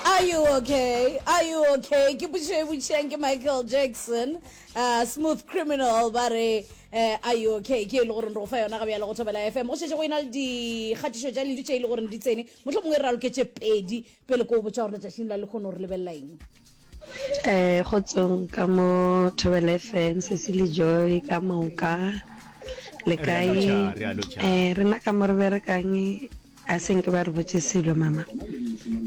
Are you okay? Are you okay? Ke butše e butšeng ke Michael Jackson. Uh, smooth criminal ba re uh, are you okay? Ke e le gore re go fa yona ga bjale go thobela FM. Go šetše go ena le dikgatišo tša ledu tše e le gore di tsene. Mohlomongwe re raloketše pedi pele ko o botša gore letšatšing la lekgono re lebelela eng. Eh kgotsong ka mo Thobela FM Cecily Joy ka moka le Re a kae lotšha, re a lotšha. eh rena ka mo re berekang a seng ke ba re botse selo mama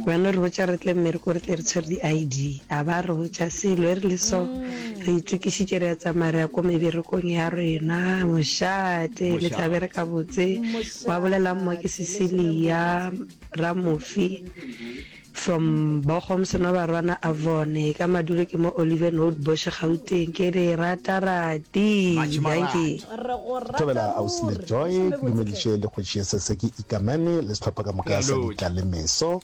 ba no re botsa re tle mmereko re tle re tshwere di-id a ba re botsa selo e re le so re itokisitše re ya tsamaya re ya ko meberekong ya rena mošate le tla Mošate. bereka botse wa bolelang mo ke Cecilia Ramofi From Bochum Senobarwana Avon ka Madule ke mo Oliven Road Bosch Gauteng ke le rata rati dankie. Re go rata ruri Thobela Ausi Lejoe ke dumediše le Kgoši Yesese ke ikamane le sehlopha ka moka sa Ditla le Meso.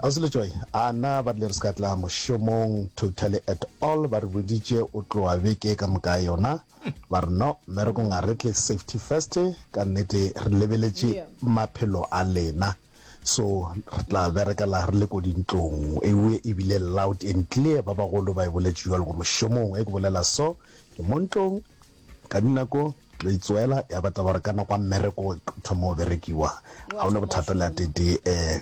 Ausi Lejoe a na ba rile re se ka tla mošomong totally at all ba re boditše o tloa beke ka moka yona ba re no mmerekong a re tle safety first ka nnete re lebeletše maphelo a lena. So re tla berekela re le ko dintlong. Ewe e bile loud and clear, ba bagolo ba e boletše jwalo go mošomong. Ge ke bolela so, ke mo ntlong, ka dinako lo itsoela, ya ba taba gore ka nako ya mmereko e thoma go berekiwa. Ga o na bothata le a tetee, um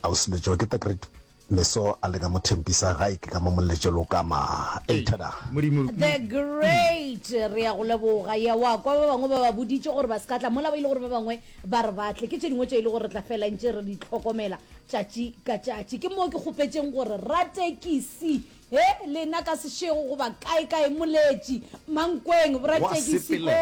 ausi Letšoa, ke the great Meso a le ka mo thempisa gae ke ka mo molletše lokama. Ei thada. The great re ya go leboga ya wa kwa ba bangwe ba ba boditše gore ba se ka tla mola ba ile gore ba bangwe ba re ba tle ke tše dingwe tše e le gore re tla fela ntše re di tlhokomela tšatši ka tšatši ke moo ke kgopetšeng gore ratekisi he lena ka sešego goba kae kae moletši mankweng boratekisi ko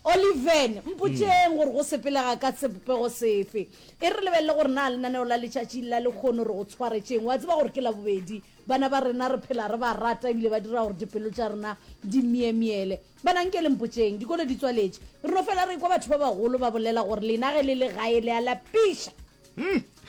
oliven mpotšeng gore go sepelega ka sebopego sefe E re lebelele gore na lenaneo la letšatši la lekgono re go tshwaretšeng. Wa tseba gore ke Labobedi. Bana ba rena re phela re ba rata ebile ba dira gore dipelo tša rena di myemyele. Bana, nke le mpotšeng, dikolo di tswaletše. Re no fela re ekwa batho ba bagolo ba bolela gore lena ge le le gae le a lapiša.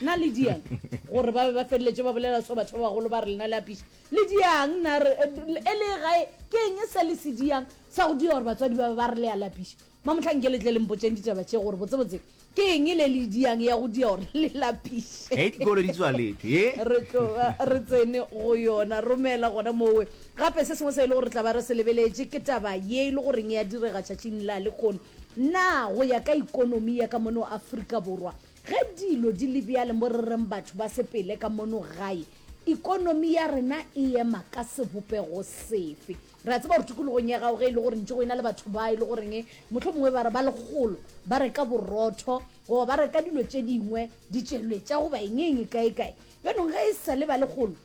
Na le diang gore ba be ba feleletše ba bolela seo batho ba bagolo ba re lena le apiša? Le diang na re e le gae? Ke eng e sa le se diang sa go dira gore batswadi ba be ba re le a lapiša? Mamohlanke le tle le mpotšeng ditaba tše gore botsebotse ke eng le le diang ya go dia gore le lapiše. Hei dikolo di tswaletšwe ye. Re tloga re tsene go yona. Romela gona mowe. Gape se sengwe se e le gore re tla ba re se lebeletše ke taba ye e le goreng ya direga tšatšing la lekono. Na go ya ka ikonomi ya ka mono Afrika Borwa ge dilo di le bjale mo re reng batho ba sepele ka mono gae, ikonomi ya rena e ema ka sebopego sefe? Re a tseba gore tikologong ya gago ge e le gore ntše go e na le batho ba e le goreng mohlomongwe ba re ba lekgolo ba reka borotho goba ba reka dilo tše dingwe ditšeletša goba engeng kaekae bjanong ge e sa le ba lekgolo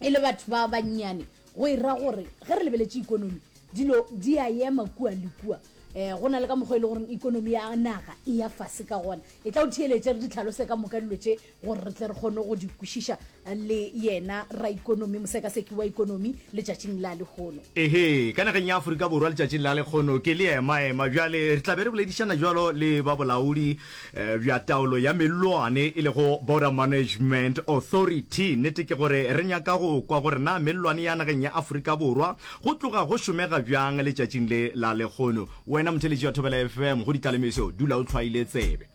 e le batho ba bannyane go e ra gore ge re lebeletše ikonomi dilo di a ema kua le kua um go na le ka mokgwa e le goreng ikonomi ya naga e ya fase ka gona e tla o theeletše re di tlhalose ka moka dilo tše gore re tle re kgone go di kwešiša le yena raikonomi mosekaseki wa ikonomi letšatšing la lehono ehe ka nageng ya aforika borwa letšatšing la lekgono ke le emaema bjale re tla be re boledišana jalo le ba bolaodi eh, bja taolo ya mellwane e lego border management authority nnete ke gore re nyaka go kwa gore na mellwane ya nageng ya aforika borwa go tloga go šomega bjang letšatšing le la lekgono wena motheletši wa thobela fm go ditlalemeso dula o tlhwaile tsebe